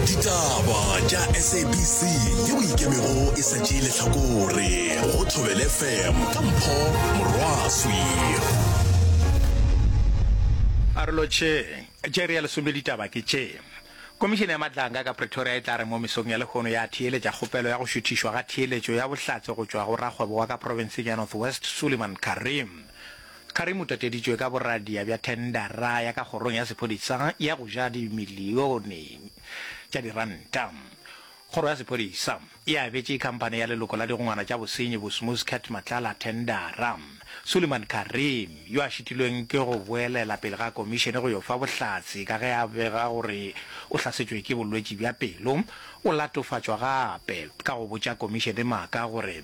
ditaba tša sabc yeo e ikemego e sa tšee lehlakore go thobele fm ka mpho morwaswi Arolo tše tše re ya lesome ditaba ke tše. Komišene ya Matlanga ka Pretoria e tla re mo mesong ya lehono ya theeletša kgopelo ya go šuthišwa ga theeletšo ya bohlatse go tšwa go rakgwebo wa ka profenseng ya North West Suliman Karim. Karim o tateditšwe ka boradia bja thendara ya ka kgorong ya sephodisa ya go ja dimilione tša diranta. Kgoro ya sephodisa e abetše khamphane ya leloko la digongwana tša bosenyi Bosmus Cat Matlala thendara. Suliman Karim, yo a šitilweng ke go boelela pele ga komišene go yo fa bohlatse ka ge a bega gore o hlasetšwe ke bolwetši bja pelo, o latofatšwa gape ka go botša komišene maaka gore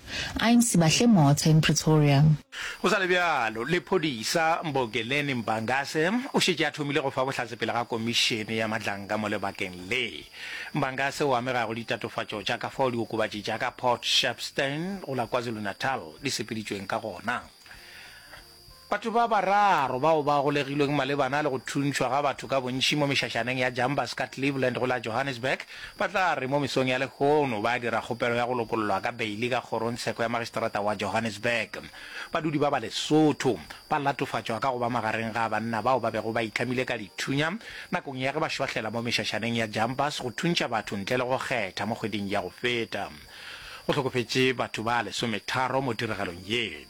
I'm Sibahle Motha in Pretoria. Go sa le bjalo, lephodisa Mbogeleni Mbangase o šetše a thomile go fa bohlatse pele ga komišene ya matlanka mo lebakeng le. Mbangase o amega go ditatofatšo tša ka fao diokobatši tša ka Port Shepstone go la KwaZulu-Natal di sepeditšweng ka gona. Batho ba bararo bao ba golegilweng malebana le go thuntšhwa ga batho ka bontši mo mešašaneng ya Jambas ka Cleveland go la Johannesburg ba tla re mo mesong ya lehono ba dira kgopelo ya go lokollwa ka beili ka kgorongtsheko ya magistrata wa Johannesburg. Badudi ba ba Lesotho ba latofatšwa ka go ba magareng ga banna bao ba bego ba itlhamile ka dithunya nakong ya ge ba šwahlela mo mešašaneng ya Jambas go thuntšha batho ntle le go kgetha mo kgweding ya go feta. Go hlokofetše batho ba lesometharo mo tiregelong ye.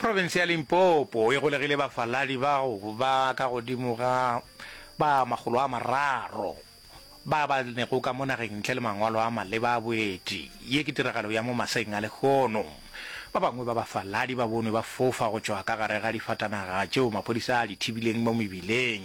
Profense ya Limpopo e golegile bafaladi bao ba ka godimo ga ba makgolo a mararo ba ba nego ka mo nageng ntle le mangwalo a maleba a boeti. Ye ke tiragalo ya mo maseng a lehono. Ba bangwe ba bafaladi ba bonwe ba fofa go tšwa ka gare ga difatanaga tšeo maphodisa a di thibileng mo mebileng.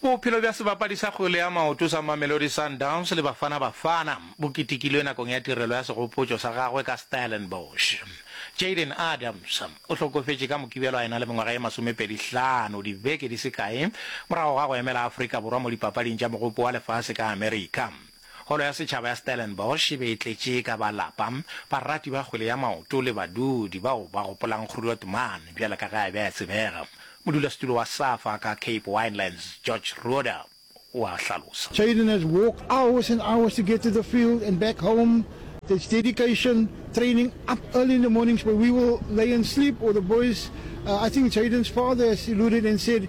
Bophelo bja sebapadi sa kgwele ya maoto sa Mamelodi Sundowns le Bafana Bafana bo ketekilwe nakong ya tirelo ya segopotšo sa gagwe ka Stellenbosch. Jayden Adams o hlokofetše ka Mokibelo a e na le mengwaga ye masomepedi hlano dibeke di se kae morago ga go emela Afrika Borwa mo dipapading tša Mogopo wa Lefase ka America. Holo ya Setšhaba ya Stellenbosch e be e tletše ka ba lapa, barati ba kgwele ya maoto le badudi bao ba gopolang Groot Man bjalo ka ge a be a tsebega. Modulasetulo wa Safa ka Cape Winelands, George Roeder, o a hlalosa. Children has walked hours and hours to get to the field and back home, that's dedication, training, up early in the mornings but we will lay and sleep or the boys, I think Children's father has alluded and said,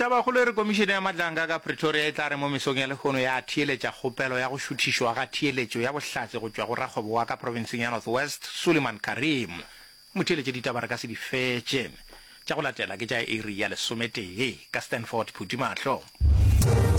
Tabakgolo e re Komišene ya Matlanga ka Pretoria e tla re mo mesong ya lehono ya theeletša kgopelo ya go šuthišwa ga theeletšo ya bohlatse go tšwa go rakgwebo wa ka profenseng ya North West, Suliman Karim. Motheeletše ditaba re ka se di fetše. Tša go latela ke tša iri ya lesometee ka Stanford Phuthimahlo.